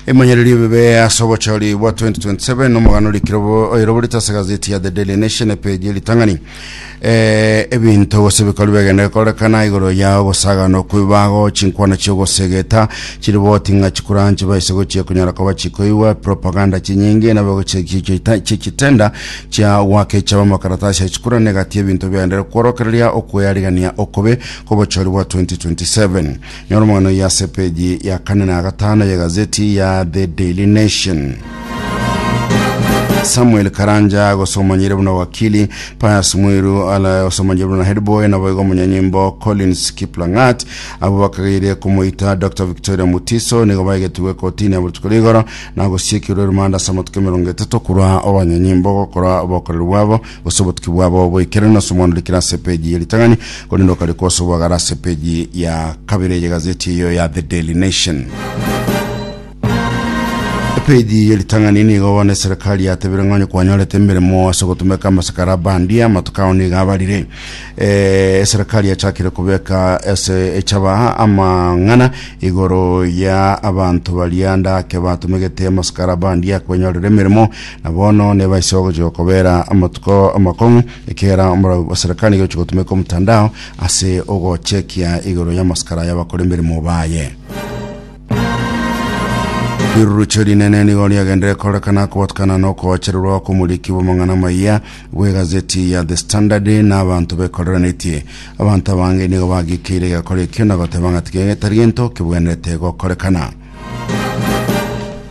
Emanyererio bibe ase obochori bwa 2027 nomogano orekirobo oiroborete ase gazeti ya The Daily Nation epeji eritang'ani eh, ebinto gose ebikorwa biagenda bikorekana igoro ya ogosagano kwebago chinkwana chiogosegeta chiriboti ng'a chikura nchibaise gochia konyara koba chikoigwa propaganda chinyinge nabo chichitenda chia gwaka echaba amakaratasi ya chikura negati ebinto biaendere kworokereria okweyarigania okobe kobochori bwa 2027 Nyora omogano oyio ase epeji ya kane na gatano y'egazeti ya The Daily Nation. Samuel Karanja agosomanyire buna wakili Pius Mwiru ala osomanyire buna headboy na boigo omunyanyimbo Collins Kiplang'at abo bakagaire komoita Dr Victoria Mutiso nigo baigetigwe kotini ya botuko rigoro na gosiekirwe rumanda ase amatuko emerongo etato korwa obanyanyimbo gokora obokoreri bwabo gose obotuki bwabo bw'ekereno ase omwana orikire ase epeji ye ritang'ani, korende okare kosobwagara ase epeji ya kabere ye gazeti eyo ya The Daily Nation. Epeji ye ritang'ani nigo bono eserekari yatebire ng'onye kwanyorete emeremo ase ogotumeka amasakara abandia amatuko ao nigo abarire. Eh, eserekari yachakire kobeka ase echaba amang'ana igoro ya abanto baria ndake batumegete amasakara abandia kwenyorera emeremo Na bono nebaiso gochia kobera amatuko amakong'u, ekiagera omorau bw'eserekani igochia gotumeka omotandao ase ogochekia igoro y'amasikara y'abakoremerimo baye. Riruruche rinene nigo riagendire korekana kobatukana na okoachererwa kw'omoriki bw'amang'ana amaya bw'egazeti ya The Standard na abanto bekorerenetie. Abanto abange nigo bagikeire egekora ekio na goteba ng'a tigetari gento kibwenerete gokorekana.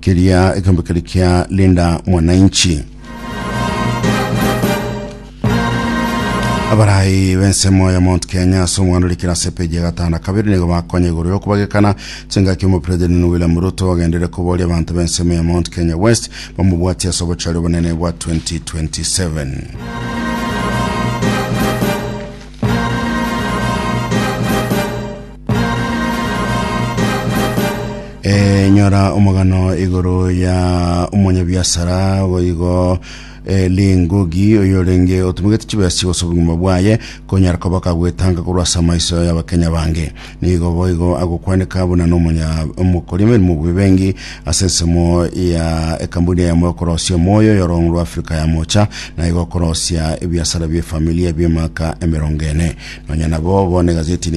Keria ekeombe keria kia Linda Mwananchi. Abarai b'ensemo ya Mount Kenya ase omwando rikira ase epeji ya gatano na kabere nigo bakonya igoro ya okobagekana chingaki omopira Daniel William Ruto agenderere koboria abanto b'ensemo ya Mount Kenya West bamobwatie ase obochare obonene bwa 2027. Eh, nyora omogano igoro ya omonyabiasara boigo eh, lingugi oyorenge otumigete chibesi gose obogima bwaye konyara koba kagwetanga korwa ase amaiso y'abakenya bange nigo boigo agokwaneka buna nomonya omokori emerimo bwebengi ase ensemo ya ekambuni yamo yokorosia omoyo yorong'u rwa afrika ya mocha na igo okorosia ebiasara bie familia biemaka emerongo ene nonya nabo bono egazeti nigo